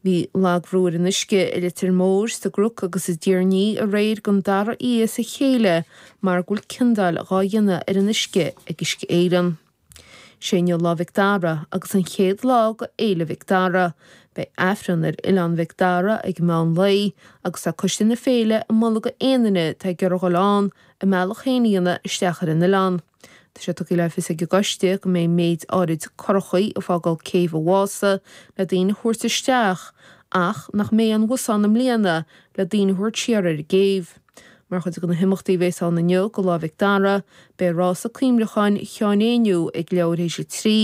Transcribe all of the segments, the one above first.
Bhí lagbhrú ar an uisce i Leitir Móir, sa gCnoc agus i dTír an Fhia aréir den dara oíche as a chéile mar go bhfuil ciondáil dhá dhéanamh ar an uisce ag Uisce Éireann. Sé inniu Lá Mhic Dara agus an chéad lá dho Fhéile Mhic Dara. Beidh Aifreann ar Oileán Mhic Dara ag meán lae agus tá Coiste na Féile ag moladh dho aon duine atá ag iarraidh dul ann a mbealach féin a dhéanamh isteach ar an oileán. Tá sé tugtha le fios ag an gcoiste go mbeidh méid áirid curachaí ag fágáil céibh an Mhása le daoine a thabhairt isteach ach nach mbeidh aon bhusanna i mbliana le daoine a thabhairt siar ar an gcéibh. Mar chuid de na himeachtaí a bheas ann inniu dho Lá Mhic Dara, beidh rása cuimleacháin Sheáin Uí Éinniú ag leathuair théis a trí,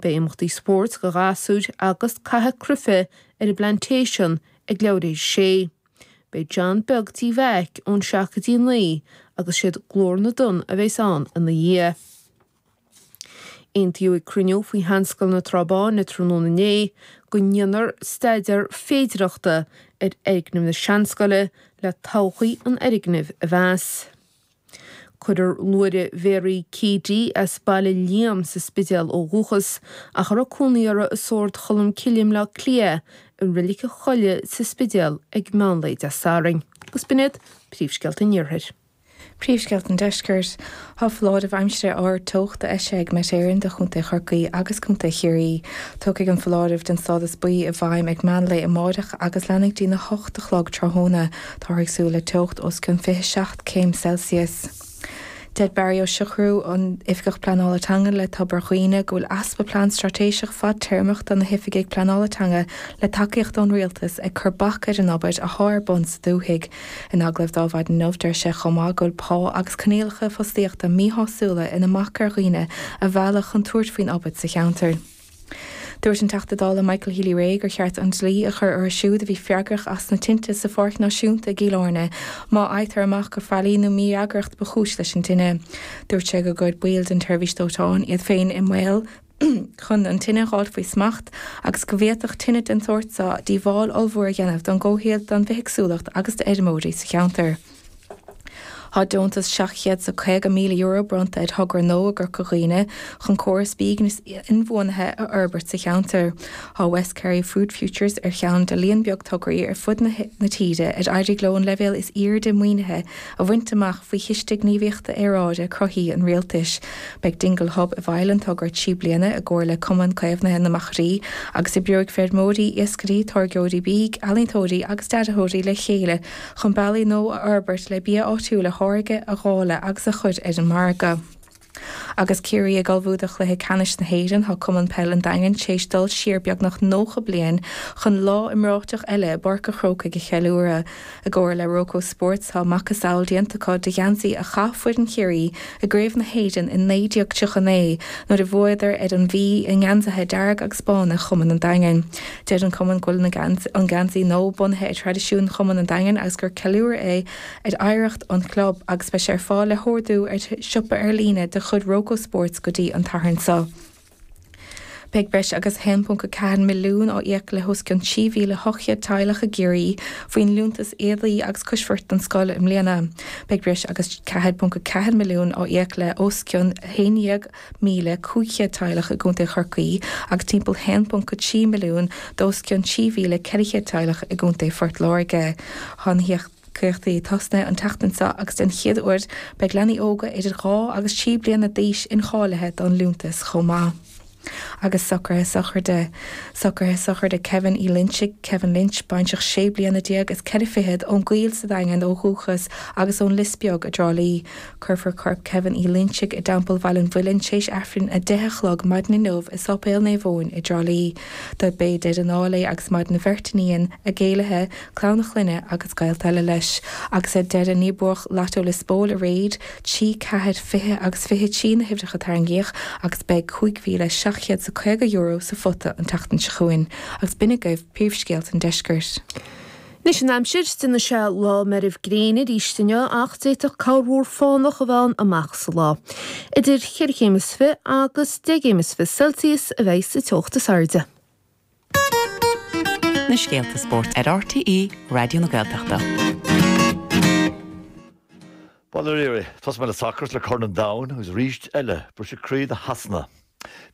beidh imeachtaí spóirt do ghasúir agus caitheamh cruife ar an bPlantation ag leathuair théis a sé. Beidh John Beag Tí Mheaic ón seacht go dtí naoi agus siad Glór na dTonn a bheas ann ina dhiaidh. Aontaíodh ag cruinniú faoi Sheanscoil na Trá Báine tráthnóna inné go ndéanfar staideár féidireachta ar fhoirgneamh na Seanscoile le todhchaí an fhoirgnimh a mheas. Cuirfear Máire Mary Keady as Baile Liam sa Spidéal ó dhúchas, ach a raibh cónaí uirthi i Sórd Cholm Cille i mBleá Cliath, i Reilig an Choillín sa Spidéal ag meán lae Dé Sathairn. Agus b'in iad príomhscéalta an Iarthair. Príomhscéalta an Deiscirt. Tá foláireamh aimsire ard teochta eisithe ag Met Éireann do Chontae Chorcaí agus Contae Chiarraí. Tiocfaidh an foláireamh den stádas buí i bhfeidhm ag meán lae amáireach agus leanfaidh go dtí na hocht a chlog tráthnóna. Táthar ag súil le teocht os cionn 27 céim Celsius. Deir Barry Ó Siochrú, an tOifigeach Pleanála Teanga le Tobar Dhuibhne, go bhfuil easpa plean straitéiseach fadtéarmach do na hoifigigh pleanála teanga le tacaíocht ón rialtas ag cur bac ar an obair athá ar bun sa dúthaigh. In agallamh dó maidin inniu, deir sé chomh maith go bhfuil pá agus coinníollacha fostaíochta míshásúla ina mbac ar dhaoine a mhealladh chun tabhairt faoin obair sa cheantar. Dúirt an Teachta Dála Michael Healy-Rae gur cheart an dlí a chur orthu siúd a bhí freagrach as na tinte sa Pháirc Náisiúnta i gCill Áirne má fhaightear amach gur faillí nó mífhreagracht ba chúis leis an dtine. Dúirt sé gur chuir baill den tseirbhís dóiteáin iad féin i mbaol chun an tine a dh'fháilt faoi smacht agus go bhféadfadh tine den tsórt so díobháil ollmhór a dhéanamh don gcomhshaol, don bhithéagsúlacht agus d'fheirmeoirí sa cheantar. Tá deontas €750,000 bronnta ar thogra nua i gCorca Dhuibhne chun córas bídh níos inbhuanaithe a fhorbairt sa cheantar. Tá West Kerry Food Futures ar cheann de líon beag tograí ar fud na tíre ar éirigh leo an leibhéal is airde maoinithe a bhaint amach faoi Chiste Gníomhaíochta Aeráide Cruthaithí an Rialtais. Beidh Dingle Hub i bhfeighil an togra trí bliana i gcomhar le Cumann Caomhnaithe na Machairí agus oibreoidh feirmeoirí, iascairí, táirgeoirí bídh, ealaíontóirí agus dearthóirí le chéile chun bealaí nua a fhorbairt le bia áitiúil a tháirgeadh, a dháileadh agus a chur ar an margadh. Agus Ciarraí ag ullmhú do Chluiche Ceannais na hÉireann, tá Cumann Peil an Daingin tar éis dul siar beagnach 90 bliain chun lá iomráiteach eile i bPáirc a' Chrócaigh a cheiliúradh. I gcomhar le Roca Sports, tá macasamhail déanta acu de gheansaí a chaith foireann Chiarraí, i gCraobh na hÉireann i 1939 nuair a bhuadar ar an Mhí i ngeansaithe dearga agus bána Chumann an Daingin. Deir an cumann go bhfuil an geansaí nua bunaithe ar thraidisiúin chumann an Daingin agus gur ceiliúradh é ar oidhreacht an chlub agus beidh sé ar fáil le hordú ar siopa ar líne de chuid Roca Sports go dtí an Satharn seo. Beidh breis agus 1.4 milliún á íoc le hos cionn 3,800 teaghlach i gCiarraí faoin liúntas Éadaí agus Coisbheart don scoil i mbliana. Beidh breis agus 4.4 milliún á íoc le os cionn 11,500 teaghlach i gContae Chorcaí agus timpeall 1.3 milliún d'os cionn 3,400 teaghlach i gContae Phort Láirge. caíochtaí ag tosnú an tseachtain seo agus den chéad uair beidh leanaí óga idir dhá agus trí bliana d'aois incháilithe don Liúntas chomh maith. Agus socruithe sochraide. Socruithe sochraide Kevin Uí Loingsigh, Kevin Lynch, baintreach sé bliana déag is ceithre fichead ón gCoill sa Daingean ó dhúchas agus ón Lios Beag i dTrá Lí. Cuirfear corp Kevin Uí Loingsigh i dTeampall Bhaile an Mhuilinn théis Aifrinn a deich a chlog maidin inniu i Sáipéal Naomh Eoin i dTrá Lí. Dob é deireadh an áil é agus maireann a bheirt iníon, a gcéilithe, clann a chlainne agus gaolta eile leis, agus ar deireadh ní buadh Lotto Lios Póil aréir, trí, ceathair, fiche agus fiche trí na huimhreacha a tarraingíodh agus beidh €5,750 sa phota an tseachtain seo chugainn agus b'in agaibh príomhscéalta an deiscirt. Anois an aimsir, déanfaidh sé lá meirbh gréine aríst inniu ach d'fhéadfadh corrmhúr fánach a bheith ann amach sa lá. Idir cheithre chéim is fiche agus deich gcéim is fiche Celsius a bheidh sa teocht is airde. na scéalta spóirt ar RTÉ Raidió na Gaeltachta. Bhuel, a Ruairí, tosóidh mé le sacar, 's le Corn an Domhain, agus arís eile, briseadh croí do Shasana.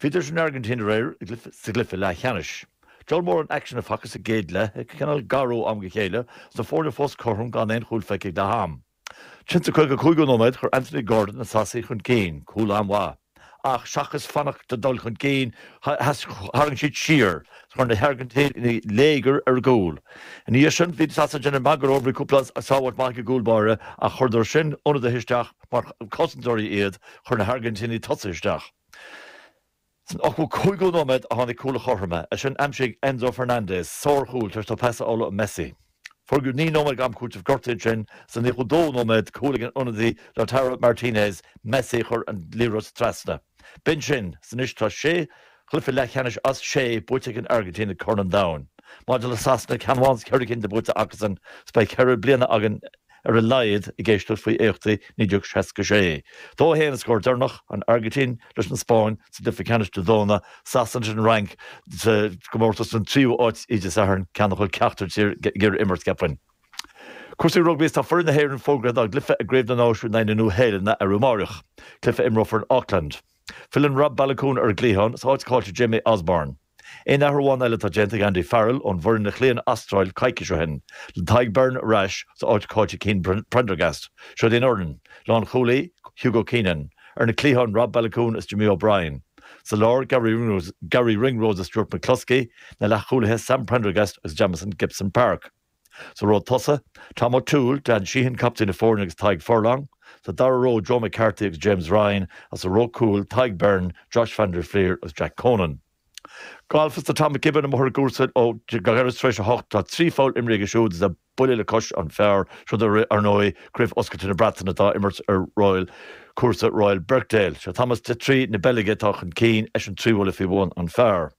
Bhíodar san Airgintín aréir, sa gcluiche leathcheannais. Diabhal mórán aicsin a facthas sa gcéad leath, ag cineál garú am go chéile, 's na foirne fós cothrom gan aon chúl feicthe ag leath ama. Insa 55ú nóiméad, chuir Anthony Gordon na Sasanaigh chun cinn, cúl an-mhaith, ach seachas fanacht le dul chun cinn, tharraing siad siar, chuir na hAirgintínigh léigear ar a gcúl. Ina dhiaidh sin, bhí Sasana ag déanamh magaidh orthu, bhí cúpla sábháilt maith ag an gcúl báire, ach chuireadar sin ionadaithe isteach mar chosantóirí iad, chuir na hAirgintínigh tosaithe isteach. San 85ú nóiméad a tháinig cúl an chothroma, é sin d'aimsigh Enzo Fernandez sárchúl tar éis dó pas a fháil ó Messi. Fógraíodh naoi nóiméad d'am cúitimh gortaithe ansin sa 92ú nóiméad, cúl ag an ionadaí Lautaro Martinez, Messi a chuir an liathróid trasna. B'in sin. 'S anois tá sé chluiche leathcheannais as sé buaite ag an Airgintín ag Corn an Domhain. Maidir le Sasana, ceann amháin as ceithre cinn atá buaite acusan, 's beidh ceithre bliana againn ar a laghad, ag éisteacht faoi éachtaí 1966. Dó a haon an scór deireanach, an Airgintín leis an Spáinn sa gcluife ceannais Dé Domhnaigh, Sasana leis an Fhrainc sa gcomórtas don tríú áit Dé Sathairn, ceann nach bhfuil ceachtar tír ag iarraidh a imirt, cheapfainn. Cúrsaí rugbaí Is tá foireann na hÉireann fógartha dá gcluife i gCraobh na Náisiún in aghaidh na Nua-Shéalainne arú amáireach, cluife a imreofar in Auckland. Filleann Rob Baloucoune ar an gcliathán, 's a áit caillte ag Jamie Osborne. Aon athrú amháin eile atá déanta ag Andy Farrell ón bhfoireann a chloígh an Astráil coicís ó shin, le Tadhg Beirne ar ais 's a áit caillte ag Cian Prendergast, seod í an fhoireann, lánchúlaí, Hugo Keenan, ar na cliatháin, Rob Baloucoune is Jimmy O'Brien, sa lár, Garry Ringrose is Stuart McCloskey, na leathchúlaithe, Sam Prendergast agus Jamison Gibson-Park. Sa ró tosaigh, Tom O'Toole, Dan Sheehan, captaen na foirne agus Tadhg Furlong. Sa dara ró, Joe McCarthy agus James Ryan agus sa ró cúil, Tadhg Beirne, Josh van der Flier agus Jack Conan. Gailf is tá Tom McKibbin amuigh ar an gcúrsa ó ghairid tar éis a hocht. Tá trí pholl imeartha aige siúd is é buille le cois an phar, seod í, ar ndóigh, Craobh Oscailte na Breataine atá á imirt ar Royal cúrsa Royal Birkdale. Sé Thomas Detry na Beilge atá chun cinn, eisean trí bhuille faoi bhun an phar.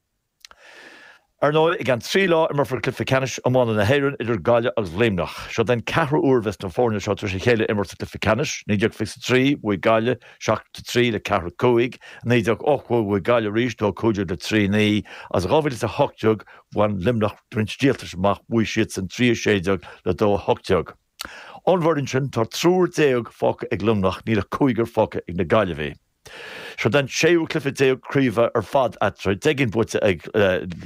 Ar ndóigh, i gceann trí lá imreofar cluiche ceannais iomána na hÉireann idir Gaillimh agus Luimneach. Seod é an ceathrú uair a bheas na foirne seo tar éis a chéile a imirt sa gcluiche ceannais, 1923 bhuaigh Gaillimh 7-3 le 4-5, i 1980 bhuaigh Gaillimh arís, 2-15 le 3-9, agus i 2018 bhain Luimneach roinnt díoltais amach, bhuaigh siadsan 3-16 le 2-18. Ón bhfoireann sin, tá triúr déag fágtha ag Luimneach, níl ach cúigear fágtha ag na Gaillimhigh. Seod é an séú cluiche déag craoibhe ar fad eatarthu, deich gcinn buaite ag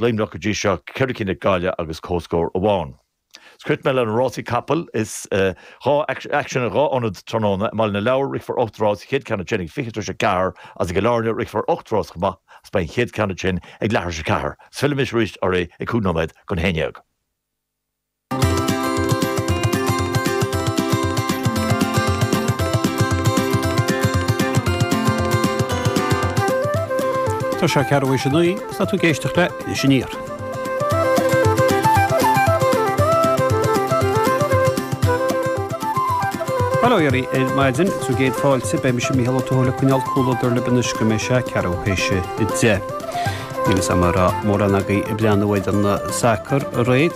Luimneach go dtí seo, ceithre cinn ag Gaillimh agus comhscór amháin. 'S críochnóidh mé le na rásaí capall is tá aicsean in dhá ionad tráthnóna, i mBaile na Lobhar rithfear ocht rás 's an chéad cheann ansin ag fiche tar éis a ceathair agus i gCill Airne rithfear ocht rás chomh maith agus beidh an chéad cheann ansin ag leathuair tar éis a ceathair. Is fillfidh mise arís oraibh ag cúig nóiméad don haon déag. Tá sé ceathrú tar éis a naoi agus tá tú ag éisteacht le Iris Aniar. Bail ó Dhia oraibh ar maidin is céad fáilte, beidh mise, Mícheál Ó Tuathail, ag coinneáil comhluadar libh anois go mbeidh sé ceathrú tar éis a deich. Níl a fhios agam an raibh mórán agaibh ag breathnú ar an sacar aréir.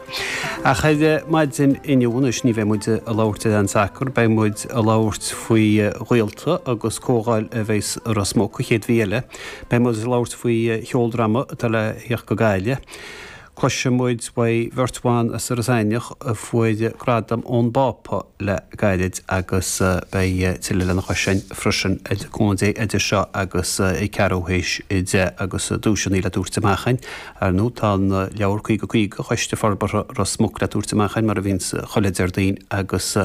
Ach ar maidin inniu, anois ní bheidh muid a labhairt ar an sacar, beidh muid a labhairt faoi ghaolta agus comhdháil a bheidh i Ros Muc an chéad mhí eile. Beidh muid a labhairt faoi cheoldráma atá le theacht go Gaillimh. Cloisfidh muid faoi bheirt bhan as Iorras Aithneach a fuair gradam ón bPápa le gairid agus beidh tuilleadh lena chois sin freisin le cúnamh Dé idir seo agus ceathrú théis a deich agus duaiseanna le tabhairt amach. Ar ndóigh, tá an leabhar 50 50 Choiste Forbartha Ros Muc le tabhairt amach ann, mar a bhíonns chuile Déardaoin, agus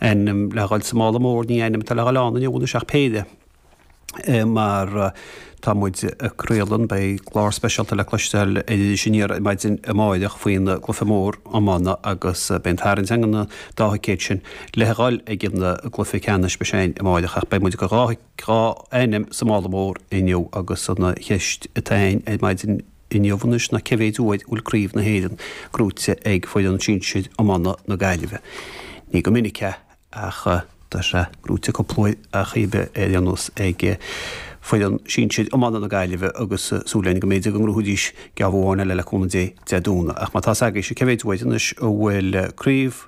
ainm le dh'fháil sa mála mór, ní ainm atá le dh'fháil ann inniu anois ach péire. Mar tá muid ag craoladh, beidh clár speisialta le cloisteáil ar Iris Aniar ar maidin amáireach faoin gcluife mór iomána agus beidh an tarraingt againn ar an dá thicéad sin le dh'fháil ag an gcluife ceannais, beidh sé sin amáireach, ach beidh muid go dhá. dhá ainm sa mála mór inniu agus an cheist atá ann ar maidin inniu anois ná cé mhéid uair an bhfuil craobh na hÉireann gnóite ag foireann sinsir iomána na Gaillimhe. Ní go minic ach tá sé gnóite cúpla uair acub cébí ar aon nós ag foireann sinsir iomána na Gaillimhe agus súil againn go mb'fhéidir go ngnóthóidís geábh eile le cúnamh Dé Dé Domhnaigh. Ach má tá's agaibhse cé mhéid uair anois an bhfuil craobh